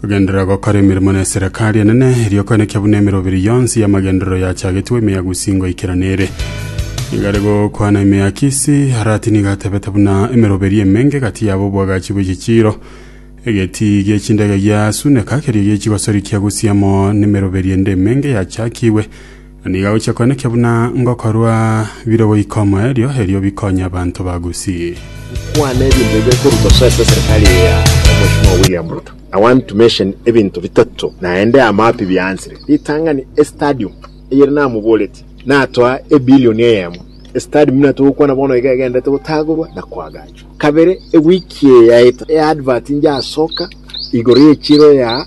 Kogenderera gokora emeremo n'eserekari enene, erio koenekia buna emeroberi yonsi y'amagenderero yachagetwe emeagusi ngoikera nere. Nigo are gokwana ime ya Kisi, Arati nigo atebete buna emeroberi emenge gati yabo obwagachi bw'echichiiro. Egetii gi'echindege giasuneka, kerio gi'echigosori kiagusia amo nemeroberi ende emenge yachakigwe. Na nigo agochia koenekia buna ngokorwa bire goika omoerio, erio bikonye abanto ba Gusii. Kwana ebinto bibere korwa mosoe ase eserikari eye ya Mweshimiwa William Ruto. I want to mention ebinto bitato naende amapi biaansire. Ritang'ani estadium eyere namoboretie natoa ebilioni eyemo. Estadium buna togokwana bono iga egenderete gotagorwa na koagachwa. Kabere ewiki eye yaeta eadvert injasoka igoro y'echiro ya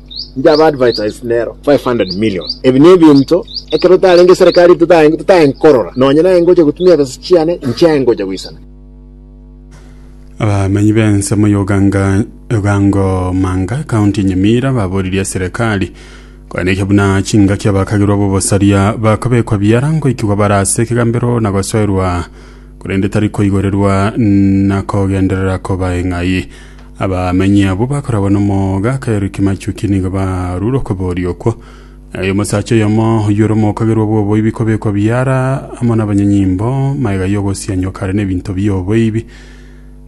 Nchaba advertise nero 500 million. Ebi nebinto ekero tarenge serikali totae totae nkorora. Nonye naye ngocha gotumia ebesa chiane inchiaye ngocha goisana. Abamenyi b'ensemo y'Oganga Ogangomanga, ekaunti ya Nyamira baboririe eserekari koenekia buna chingaki abakagirwa b'obosaria bakobekwa biara ngoikigwa bare ase ekegambero na gosoerwa korende tari koigorerwa na kogenderera koba eng'ai. Abamenyi abwo bakorabwo nomoga, akairwe kimachuki nigo barure okoboria okwo. Aye omosacha oyomo oyore omokagerwa bw'oboibi kobekwa biara amo nabanyanyimbo, magega y'ogosianywa kare nebinto bi'oboibi,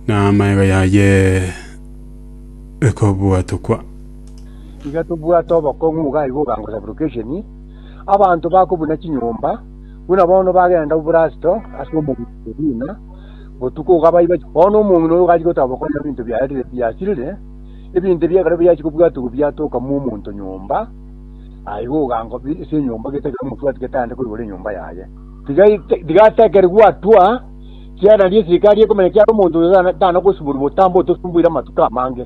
na amagega yaye ekobwatokwa. Tiga tobwate obokong'u nigo aye bogang'usa vocation abanto bako buna chinyomba, buna bono bagenda oborasto ase omogusii Libina, botuko ogabayi bache bono omong'ina oyo gachi gotaba konya ebinto biarire biasirire ebinto ebio ekero biachi kobwatugwa biatoka mu omonto nyomba aye igo ogango ase enyomba getakire omotwati getande koigora enyomba yaye tiga ite- tiga atekere gwatwa kiarandi esirikari ekomenya kiara omonto oyo tana- tana gosiborwa botambe otosumbuire amatuko amange